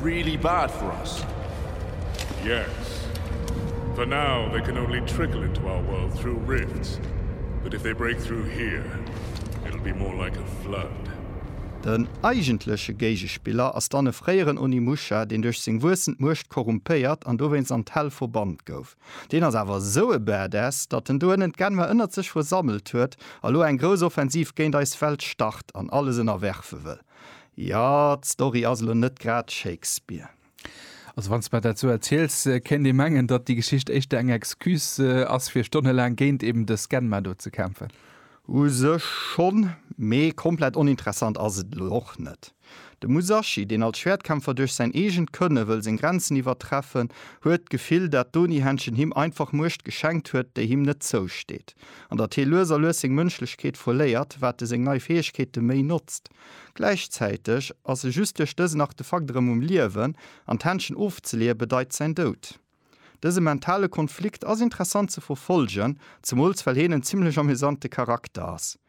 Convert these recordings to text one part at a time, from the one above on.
really bad for us yes for now they can only trickle into our world through rifts but if they break through here it'll be more like a flood Den eigentleche Géigespiller ass dann e fréieren Onimusha, deen duerch seng wuessend Muecht korrumpéiert an dowéinst an d'Hell verbannt gouf. Deen ass awer esou e Badass, datt en dohinnen d'Genwer ënnert sech versammelt huet a lo eng grouss Offensiv géint eis Welt start an alles ënnerwerfe wëll. Jo, d'Story ass elo net grad Shakespeare. Also wann s de mer dat esou erziels, kéint ee mengen, datt déi Geschicht éischter eng Excuse ass, fir stonnelaang géint eben dës Genma do ze kämpfen. U sech schonn, mee komplett oninteressant ass et elo och net. De Musashi, deen als Schwäertkämpfer duerch säin eegent Kënne wëll seng Grenzen iwwertreffen, huet d'Gefill, dat d'Oni-Händchen him einfach Muecht geschenkt huet, déi him net zousteet. An datt hie lues a lues seng Mënschlechkeet verléiert, wat e seng nei Fäegkeete méi notzt. Gläichzäiteg ass e just duerch dësen Artefakt erëm um Liewen, an d'Händschen ofzeleeë bedeit säin Doud. Dëse mentale Konflikt ass interessant ze verfollegen, zemools well hien en zimmlech amüsante Charakter ass.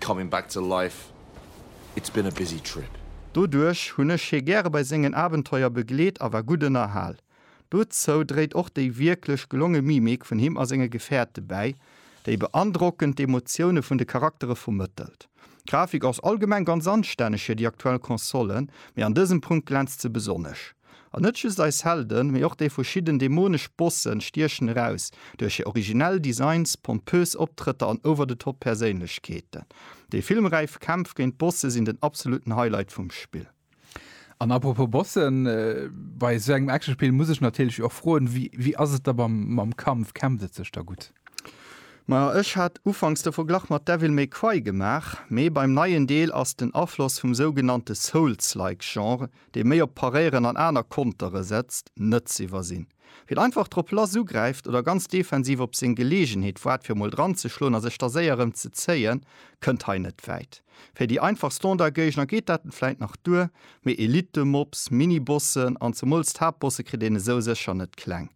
Coming back to life, it's been a busy trip. Doduerch hunn ech hie gäre bei sengen Abenteuer begleet a war gutt ënnerhal. Dozou dréit och déi wierklech gelonge Mimik vun him a senge Gefäerte bäi, déi beandrockend d'Emotioune vun de Charaktere vermëttelt. D'Grafik ass allgemeng ganz anstänneg fir déi aktuell Console, mee an dësem Punkt glänzt se besonnesch. An net just eis Helden, mee och déi verschidden dämonesch Bossen stiechen eraus, duerch hir originell Designs, pompös Optrëtter an Over-the-Top-Perséinlechkeeten. Déi filmräif Kämpf géint d'Bosse sinn den absolutten Highlight vum Spill. An apropos Bossen, bei esou engem Actionspill muss ech natierlech och froen, wéi ass et da mam Kampf? Kämpft et sech da gutt? Majo, ech hat ufanks de Verglach mat Devil May Cry gemaach, mee beim neien Deel ass den Afloss vum sougenannte Souls-like-Genre dee méi op Paréieren an aner Kontere setzt, net z'iwwersinn. Wien einfach drop lass ugräift oder ganz defensiv op seng Geleegenheet waart fir mol dranzeschloen a sech da séier erëm ze zéien, kënnt hei net wäit. Fir déi einfach Standardgéigner geet dat vläit nach duer, mee Elite-Mobs, Mini-Bossen an zemools d'Haaptbosse kritt een esou sécher net kleng.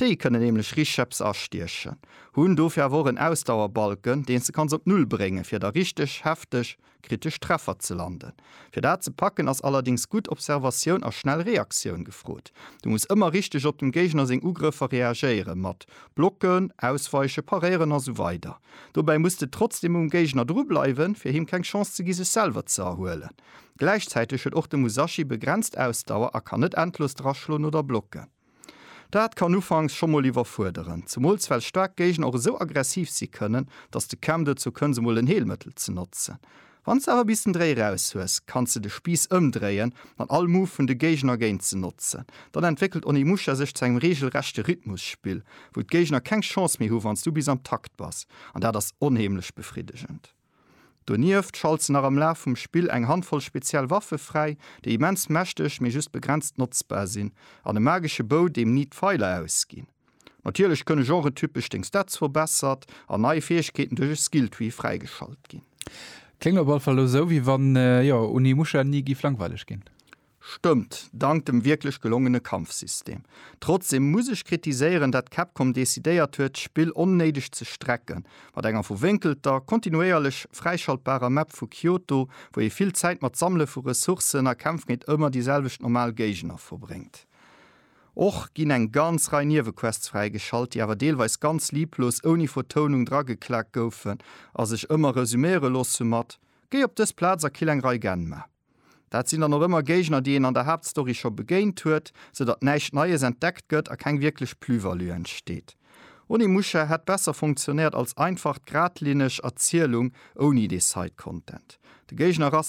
Déi kënnen nämlech Richëps astiechen, hunn dofir awer och en Ausdauerbalken, deen s de kanns op Null bréngen, fir da richteg hefteg kritesch Treffer ze landen. Fir dat ze packen, ass allerdéngs gutt Observatioun a schnell Reaktioun gefrot. Du muss ëmmer richteg op dem Géigner seng Ugrëffer reagéieren, mat Blocken, Ausweichen, Paréieren a sou weider. Dobäi muss de trotzdeem um Géigner dru bleiwen, fir him keng Chance ze gi sech selwer ze erhuelen. Gläichzäiteg huet och de Musashi begrenzt Ausdauer a kann net endlos draschloen oder blocken. Dat kann ufanks scho mol iwwerfuerderen, zemools well staark Géigner och esou aggressiv si kënnen, datt de Cam dozou kënns emol en Heelmëttel ze notzen. Wann s de awer bis den Dréi raus hues, kanns de de Spiiss ëmdréien an all Move vun de Géigner géint se notzen. Dann entwéckelt Onimusha sech zu engem reegelrechte Rhythmusspill, wou d'Géigner keng Chance méi hu wann s du bis am Takt bass, an dat ass onheemlech befriddegend. Donieft schalt se nach am Laf vum Spill eng Handvoll speziell Waffe fräi, déi immens mächteg, mee just begrenzt notzbar sinn, an e magesche Bow, deem ni d'Feiler ausginn. Natierlech kënne genretypesch deng Stats verbessert an nei Fäegkeeten duerch e Skilltree fräigeschalt ginn. Kléngt op all Fall elo sou, wéi wann, jo, Onimusha ni giff langweileg ginn. Stëmmt, dank dem wierklech gelongene Kampfsystem. Trotzdeem muss ech kritiséieren, dat Capcom decidéiert huet, d'Spill onnéideg ze strecken, mat enger verwénkelter, kontinuéierlech fräischaltbarer Map vu Kyoto, wou ee vill Zäit mat Sammele vu Ressourcen a Kämpf géint ëmmer déi selwecht normal Géigner verbréngt. Och ginn eng ganz Rei Niewequests fräigeschalt, déi awer deelweis ganz lieblos, ouni Vertounung drageklaakt goufen a sech ëmmer resuméiere loosse mat, Géi op dës Plaz a kill eng Rei Genma. Dat sinn dann och ëmmer Géigner, déi een an der Haaptstory scho begéint huet, sou datt näischt Neies entdeckt gëtt a keng wierklech Plus-value entsteet. Onimusha hätt besser funktionéiert als einfacht, gradlinneg Erzielung ouni dee Side-Content. De Géigner ass.